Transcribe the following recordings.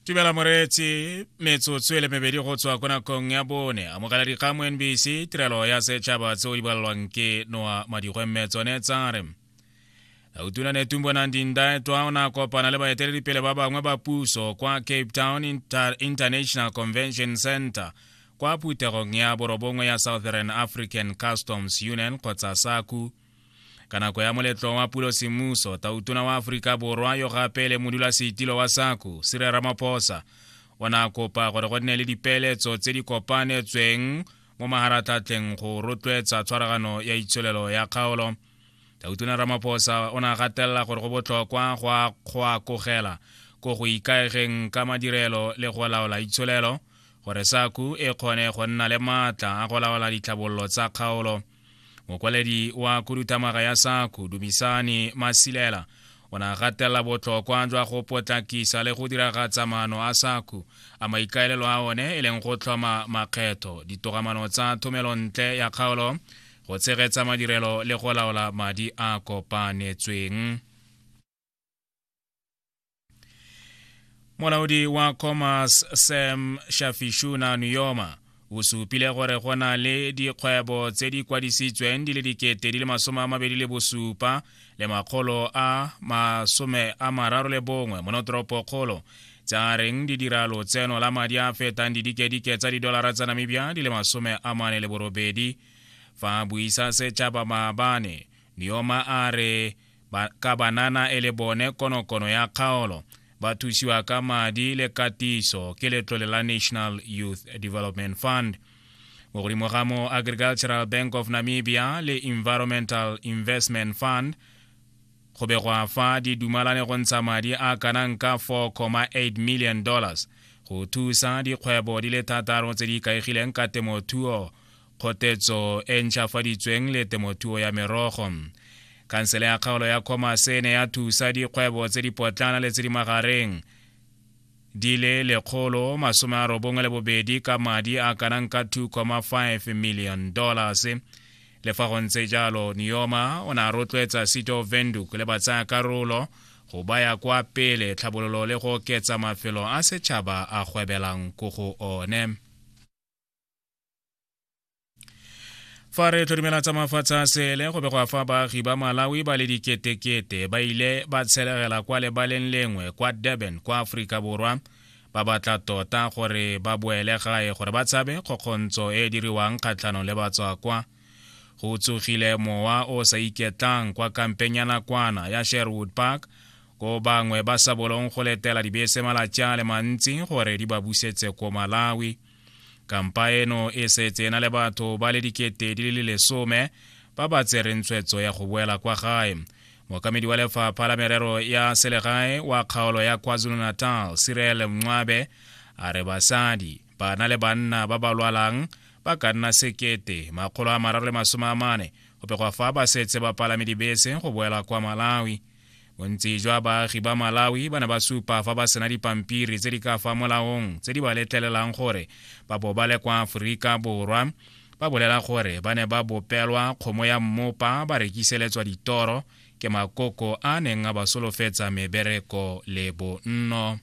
tumela moreetsi metsotso e le mebedi go tswa ko nakong ya bone amogela dikgang mo nbc tirelo ya setšhaba tseo di balelwang ke noa madikgwe mme tsone tsa re utuna ne tumbo nang dindaetwa o ne a kopana le baeteledipele ba bangwe ba puso kwa cape town Inter international convention center kwa phuthegong ya borobongwe ya southern african customs union kgotsa saku ka nako ya moletlo wa pulo semmuso tautona wa aforika borwa yo gape le modulasetilo wa sako sire ramaphosa o ne a kopa gore go nne le dipeeletso tse di kopanetsweng mo maharatlhatlheng go rotloetsa tshwaragano ya itsholelo ya kgaolo tautona ramaphosa o ne a gatelela gore go botlhokwa go akogela ko go ikaegeng ka madirelo le go laola itsholelo gore saku e kgone go nna le maatla a go laola ditlhabololo tsa kgaolo mokwaledi wa khuduthamaga ya saku dumisane masilela o ne a gatelela botlhokwa jwa go potlakisa le go diragatsa maano a saku a maikaelelo a one e leng go tlhoma makgetho ditogamano tsa thomelontle ya kgaolo go tshegetsa madirelo le go laola madi a kopanetsweng molaodi wa commerce sam shafishuna nuyoma o supile gore go na le dikgwebo tse di kwadisitsweng di le dikete di le masome a mabedi le bosupa le makgolo a masome a mararo le bongwe mo notoropokgolo tsa reng di dira lotseno la madi a fetang didikedike tsa didolara tsa namibia di le masome a mane le borobedi fa buisa setšhaba maabane dioma a re ba, ka banana e le bone konokono ya kgaolo ba thusiwa ka madi le katiso ke letlole la national youth development fund mo godimo ga mo agricultural bank of namibia le environmental investment fund go be gwa fa di dumalane go ntsha madi a kanang ka 4,8 million dollars go thusa dikgwebo di le thataro tse di ikaegileng ka temothuo kgotetso e ntšhafaditsweng le temothuo ya merogo khansele ya kgaolo ya commerce e ne ya thusa dikgwebo tse di potlana le tse di magareng di le lekgolo masome a robongwe le bobedi ka madi a kanang ka 2,5 million dollars le fa go ntse jalo neoma o ne a rotloetsa city of venduk le batsaya karolo go baya kwa pele tlhabololo le go oketsa mafelo a setšhaba a gwebelang ko go one fa re tlhodimela tsa mafatshe a sele go begwa fa baagi ba malawi ba le diketekete ba ile ba tshelegela kwa lebaleng lengwe kwa durban kwa aforika borwa ba batla tota gore ba boele gae gore ba tshabe kgokgontso e e diriwang kgatlhanong le batswakwa go tsogile mowa o sa iketlang kwa kampeng ya nakwana ya sherwood park ko bangwe ba sa bolong go letela dibese malatsi a le mantsi gore di ba busetse ko malawi kampa eno e setse e na le batho ba le dikete di le lesome ba ba tsereng tshwetso ya go boela kwa gae mokamedi wa lefapha la merero ya selegae wa kgaolo ya kwazulu-natal sirel mncwabe a re basadi bana le banna ba ba lwalang ba ka nna sekete makgolo a mararo le masome a mane go pegwa fa ba setse ba palame dibese go boela kwa malawi bontsi jwa baagi ba malawi ba ne ba supa fa ba sena dipampiri tse di ka fa molaong tse di ba letlelelang gore ba bo ba le kwa aforika borwa ba bolela gore ba ne ba bopelwa kgomo ya mmopa ba rekiseletswa ditoro ke makoko a neng a ba solofetsa mebereko le bonno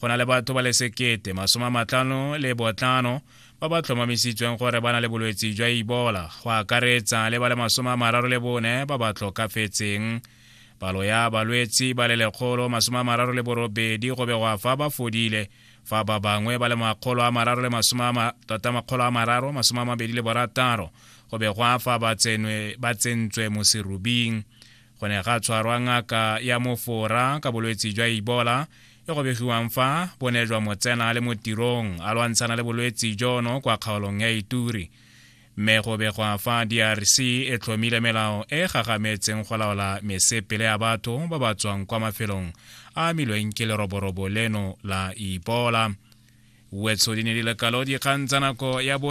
go na le batho ba le sekete masome a matlhano le botlhano ba ba tlhomamisitsweng gore ba na le bolwetse jwa ibola go akaretsa le ba le masome a mararo le bone ba ba tlhokafetseng palo ya balwetsi ba le lekgolo masome a mararo le borobedi go begwa fa ba fodile fa ba bangwe ba le makgolo a mararo le tota makgolo a mararo masome a mabedi le borataro go begwa fa ba tsentswe mo serubing go ne ga tshwarwa ngaka ya mofora ka bolwetse jwa ibola e go begiwang fa bo ne jwa motsena le mo tirong a lwantshana le bolwetse jono kwa kgaolong ya ituri mme go begwa fa drc e tlhomile melao e gagametseng go laola mesepele ya batho ba ba tswang kwa mafelong a amilweng ke leroborobo leno la ibola wetso di ne di lekalo dikgang tsa nako ya bone